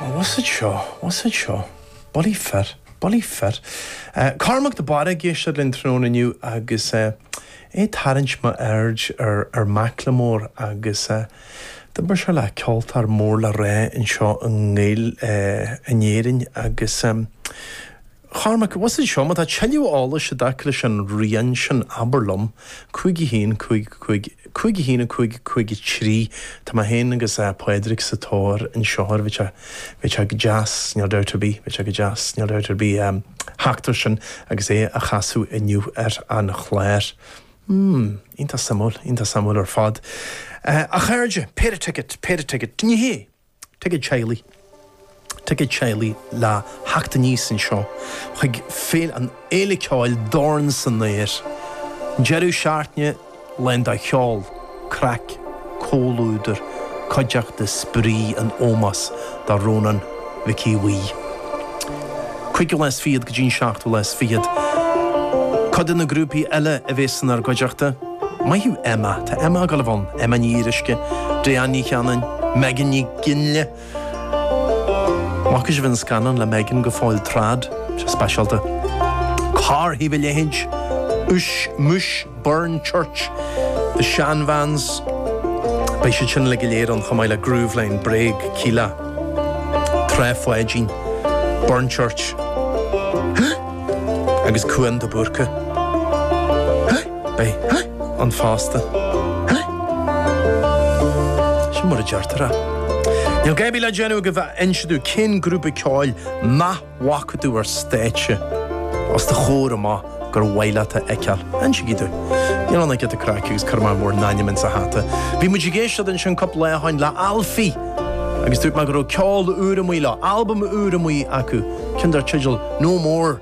Oh what's it seo? What's it seo? Bullaí fir, bullaí fir. Cormac de Barra ag éisteacht linn tráthnóna inniu agus é ag tarraingt m'aird ar Macklemore agus d'oibir sé le ceoltóir mór le rá anseo in Éirinn agus Chormaic, Bhus anseo, má tá tuilleadh eolais i dtaca leis an rian sin, abair liom. 51, 55, 51, 5, 53, Tá mé féin agus Pádraig sa tóir anseo air, bheadh sé go deas, níl dabht ar bith, bheadh sé go deas, níl dabht ar bith, a theacht air sin agus é a chasadh inniu ar an chlár. Hmm, iontach suimiúil, iontach suimiúil ar fad. A chairde, péire ticéad, péire ticéad. Ní hea! Ticéad teaghlaigh, ticéad teaghlaigh le theacht aníos anseo chuig Féile an Fhéile Ceoil Dorn san Aer! Deireadh Seachtaine lán de cheol, craic, comhluadar, cuideachta, spraoi in ómós do Rónán Mhic Aodha Bhuí. Cúigiú lá is fichead go dtí an seachtú lá is fichead. Cuid de na grúpaí eile a bhéas inár gcuideachta. Maith thú Emma. Tá Emma ag gabháil a bheith ann, Emma Ní Fhíoruisce, Diane Ní Chanainn, Megan Nic Fhionnghaile! Bhfaca sibh an scannán le Megan go fóill Trad? Sé speisialta. Cár thaobh a leithéid? Uis, muis, Burnchurch, The Shan Vans, beidh siad sin uilig go léir ann chomh maith le Grooveline, Bréag, Kíla, Trá Pháidín, Burnchurch, Huth! agus Cuan de Búrca. Huth! Beidh ann fosta. Sin mar a deirtear é. Níl dadaí le déanamh agaibh ach inse domh cén grúpa ceoil nach bhfaca tú ar stáitse. Os do chomhair amach gur mhaith leat a fheiceáil, insígí domh. Níl ann ach giota craic agus cuirfidh mé bhur n-ainm ins an hata. Bhí muid ag éisteacht ansin cupla lá ó shin le Alfi agus dúirt mé go raibh ceol úr amuigh leo, albam úr amuigh acu, ceann dar teideal No More.